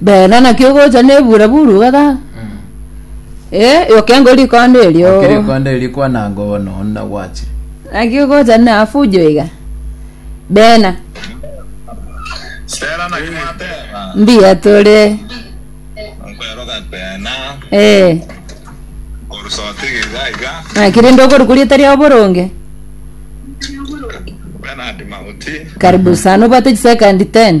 Bera naki ogocha na ebura buru iga ga. Eh, yokengo rikonda erio. Okirikonda eri kwananga ono onna gwache. Naki ogocha na afujo iga. Bena. Sera naki mwateba. Mbiya tore. Nkweroka kwena. Eh. Orusoti iga iga. Naki rinde okori kuri etari oboronge. Bernard Mauti. Karibu sana obate chisekandi 10.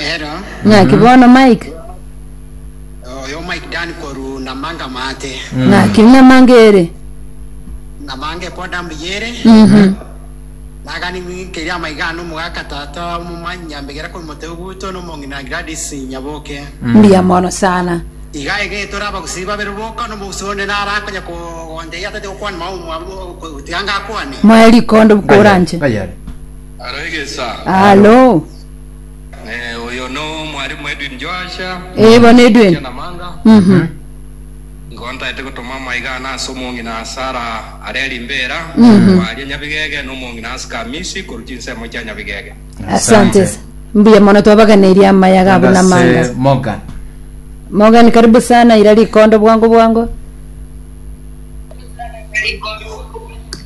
Ero, Ng'aki bono Mike? oyo Mike Dan korwa Namanga Maate. Ng'aki Namanga ere? Namanga epoda mbuya ere. Nagani ng'ikeri amaiga ano omogaka tata omomanyi nyambegera korwa Moteu Guto na omong'ina Gladys Nyaboke. Mbuya mono sana. Iga iga etore abagusii babere boka na omogusii onde nara akonya kogonteiya tati gokwana mao omwabo tiga ngakwane. Moe rikondo bukora nche. Ng'ai are? Alo. Ee, bono Edwin. Mhm. Asante. Mbuya mono twabaganeirie amayaga abwo na Gose amangasa. Morgan. Morgan karibu sana ira rikondo bwango bwango.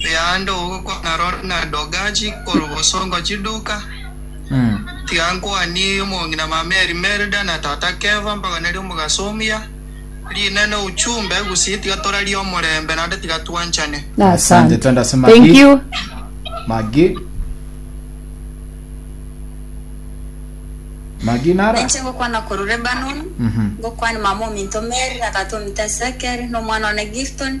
Riaande ogokwana rore na Dogaji korwa boso ngochie Duka, tiga nkwanie omong'ina mama Elimelda na tata Keva mbaganerie omogaso o muya. Riina na Uchumbe, gusii tiga torarie omorembe naende tiga twanchane. Asante twende ase Thank Maggie. you. Maggie. Maggie nara. Ninche ngokwana korwa Lebanon, Mhm. ngokwania mama ominto Mary na tata ominto Ezekiel, na omwana one Gifton,